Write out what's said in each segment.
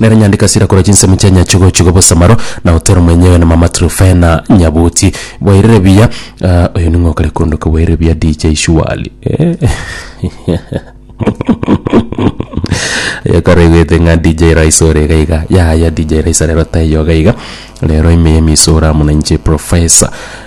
Nere nyandiki ase rirakora chinsemo chia Nyachigochigo Bosamaro, na Otero mwenyewe, na Mama Trufena Nyabuti. Bwairire buya ah, oyo ning'o okare koondoka bwairire buya DJ Shuali. Eh. yakare gwete ng'a DJ Rice ore iga iga yaya DJ Rice rero taiyo iga iga rero ime emiso ora muna inche professor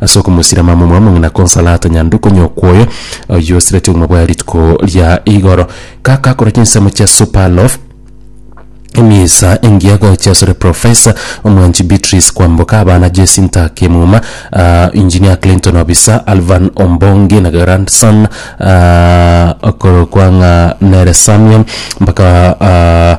Ase okomosira mamomwa omong'ina Consolata Nyanduko nyokwa oyo oyio osireti obogima bwaye rituko ria igoro, gakakora chinsemo chia Super Loaf, emisa engiya gocha asore Professor Omwanchi Beatrice Kwamboka, abana Jecinta Kimuma, ah, Engineer Clinton Obisa, Alvan Ombongi na grandson ah, okorokwa ng'a nere Samuel mpaka ah,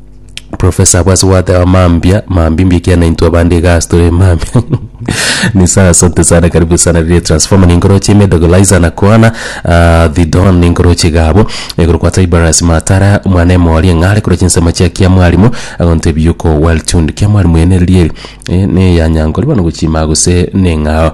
Professor bwase gwateba mambia mambimbia ekiagera na intwe abande iga ase tore mambia ni sawa asante sana karibu sana riria transformer ninkoroche ime dogolizer na kwana ah, the don ninkoroche iga abo igoro kwa tiberius matara omwana emori eng'are koroche nsemo chia kia mwarimu agonte ebiyuko well tuned kia mwarimu ene rieri eh, ne ya nyankori bono gochima gose neng'ao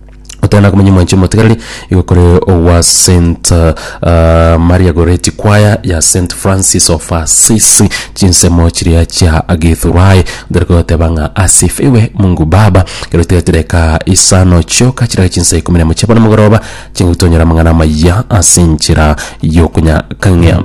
Gotana komenya mwanchi omotigareri igo kore ogwa Saint ah, Maria Goretti Choir ya Saint Francis of Assisi chinsemo chiria chia Githurai ndere kogoteba ng'a asifiwe Mungu Baba kero tigatire ka isano chioka chiraka chinsa ikomi na emo chia bono mogoroba chingotonyora amang'ana amaya ase inchera y'okonyakang'ia